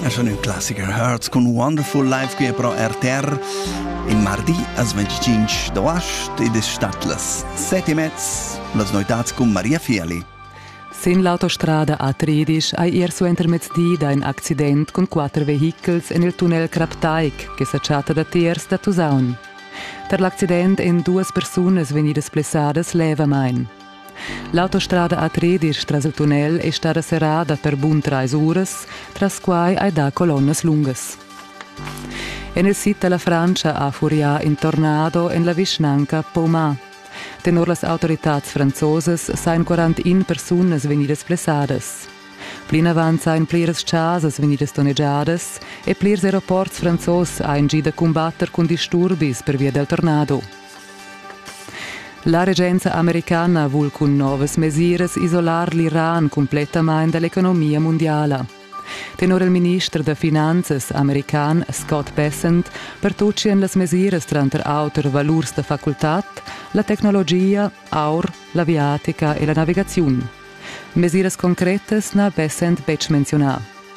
Es schon ein Klassiker Herz con Wonderful Life qui è pro RTR in mardi as 25 d'agost ed es stat las 7 e mezz las noitats con Maria Fieli. Sin l'autostrada A13 hai er suentermezdi da in accident con quatter vehichels en il tunnel Kraptaik che sa chatta da tiers da Tusaun. Per l'accident èn duas persunas vegnidas blessadas levamain. L'autostrada a Tredisch tras il tunnel è stada serrada per bun trais uras, tras quai hai dà colonnas lungas. En il sid da la Frantscha ha furià in tornado en la vischnanca Poma. Tenor las autoritads franzosas sajan 41 persunas vegnidas blessadas. Plinavant sajan pliras chasas vegnidas donnegiadas e plirs aeroports franzos hajan gì da cumbatter cun disturbis pervia dal tornado. La regenza americana vul cun novas mesiras isolar l'Iran cumplettamain da l'economia mundiala. Tenor il minister da finanzas american Scott Bessent pertutgian las mesiras tranter auter valurs da facultad, la tecnologia, aur, l'aviatica e la navigaziun. Mesiras concretas n'ha Bessent betg menziunà.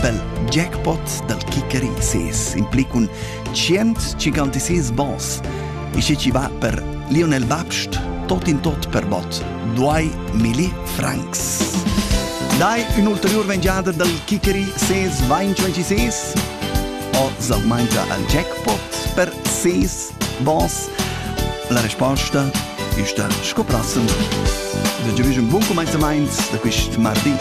pel jackpot dal kickeri ses impli cun 156 bons. E se ci va per Lionel Babst, tot in tot per bot 2 milli francs. Dai un'ulteriore mangiata dal kickeri ses Wein 26 o sal mangia al jackpot per ses bons? La risposta ist da scoprassen. Da giuvisum bun comenzament da quist mardi.